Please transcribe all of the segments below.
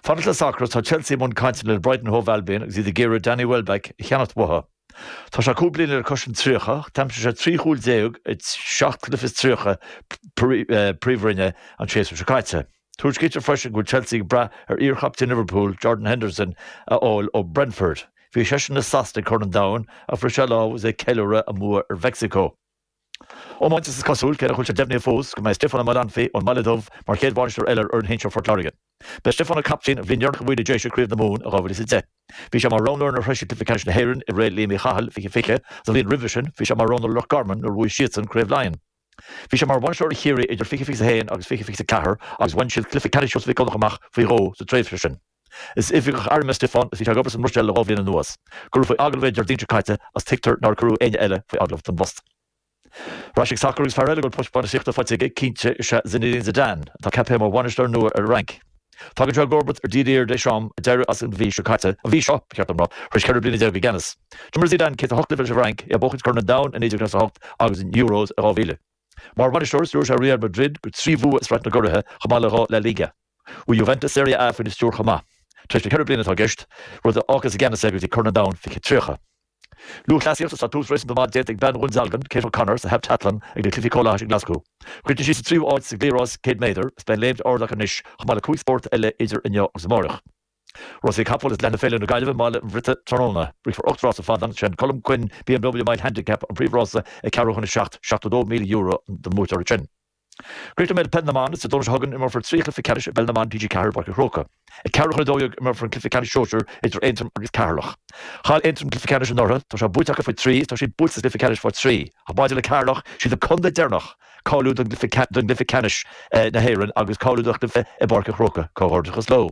Fanacht le sacar is tá Chelsea i mbun cainteanna le Brighton Hove Albion agus iad ag iarraidh Danny Welbeck a cheannacht uathu. Tá sé cúig bliana le cois an tríocha ach d'aimsigh sé trí chúl déag i seacht cluiche is tríocha Príomhroinne an séasúr seo caite. Tuairiscítear freisin go bhfuil Chelsea ag brath ar iarchaptaen Liverpool, Jordan Henderson, a fháil ó Brentford. Bhí seisean le Sasana ag Corn an Domhain ach bhris sé a lámh agus é ag ceiliúradh a mbua ar Mheicsiceo. Iomáint Is cosúil, cé nach bhfuil sé deimhnithe fós, go mbeidh Stiofán Ó Maolanfaidh ón mBaile Dubh mar chéad bhainisteoir eile ar fhoireann shinsir Phort Láirge. Ba é Stiofán an captaen an bhliain dheireanach a bhuaigh na Déise Craobh na Mumhan i 2010. Bhí sé mar roghnóir nuair a shroich siad Cluiche Ceannais na hÉireann i ré Liam Uí Chathail, 2020, Sa bhliain roimhe sin, bhí sé mar roghnóir Loch Garman nuair a bhuaigh siadsan Craobh Laighean. Bhí sé mar bhainisteoir ar Chiarraí idir 2021 agus 2024 agus bhain siad Cluiche Ceannais Sheosaimh Mhic Dhonnacha amach faoi dhó sa tréimhse sin. Is oifigeach airm é Stiofán agus bhí sé ag obair sa mBruiséil le dhá bhliain anuas. Cuireadh faoi agallamh é an Déardaoin seo caite agus tuigtear nár cuireadh éinne eile faoi agallamh don bpost. Ar ais ag sacar agus fear eile a bhfuil post bainistíochta faighte aige cinnte is ea Zinedine Zidane, atá ceaptha mar bhainisteoir nua ar an Fhrainc. Tagann sé i gcomharbacht ar Didier Deschamps a d'éirigh as an mhí seo caite, an mhí seo, ba cheart dom rá, tar éis ceithre bliana déag i gceannas. D'imir Zidane 108 cluiche leis an bhFrainc, é ag buachaint Corn an Domhain i 1998 agus an Euros i 2000. Mar bhainisteoir, stiúir sé Real Madrid go trí bhua i Sraith na gCuraithe chomh maith le dhá La Liga. Bhuaigh Juventus Serie A faoina stiúir chomh maith, tréimhse ceithre bliana atá i gceist, rud a fhágfas i gceannas é go dtí Corn an Domhain 2030. Lúthchleasaíocht Is tá tús réasúnta maith déanta ag bean Dhún Dealgan, Kate O'Connor, sa heaptatlan ag na Cluichí Comhlathais i nGlaschú. Chríochnaigh sí sa tríú háit sa gcliathrás 100 méadar. Is beidh an léimt ard aici anois chomh maith le cúig spórt eile idir inniu agus amárach. Rásaí na gCapall is leanfaidh Féile na Gaillimhe i mBaile an Bhriotaigh tráthnóna. Rithfear ocht rása ar fad is an Colm Quinn BMW Mile Handicap an príomhrása ag ceathrú chun a seacht €72,000 don mbuaiteoir ansin. Críochnóidh mé le Peil na mBan Is Dé Domhnaigh seo chugainn imreofar trí chluiche ceannais i bPeil na mBan TG4 i bPáirc an Chrócaigh. Ag ceathrú chun a dó dhéag imreofar an cluiche ceannais Sóisir idir Aontroim agus Ceatharlach. Chaill Aontroim an cluiche ceannais anuraidh, tá sé buaite acu faoi thrí agus tá siad buailte sa chluiche ceannais faoi thrí. Maidir le Ceatharlach, siad an contae deireanach cáiliú do chluiche ceannais na hÉireann agus cáiliú do chluiche i bPáirc an Chrócaigh. Comhghairdeachas leo.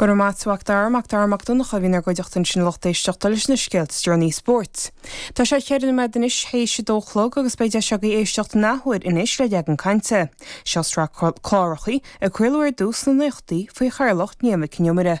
Go raibh maith a't a Mhac Dara Mac Dara Mac Donncha a bhí inár gcuideachta ansin a lucht éisteachta leis na scéalta is deireanaí spóirt. Tá sé cheithre nóiméad anois théis a dó chlog agus beidh deis agaibh éisteacht in athuair anois le Leagan Cainte. Seo sraith clárachaí, a craoladh ar dtús sna nóchaidí faoi chathaoirleacht Niamh Nic An Iomaire.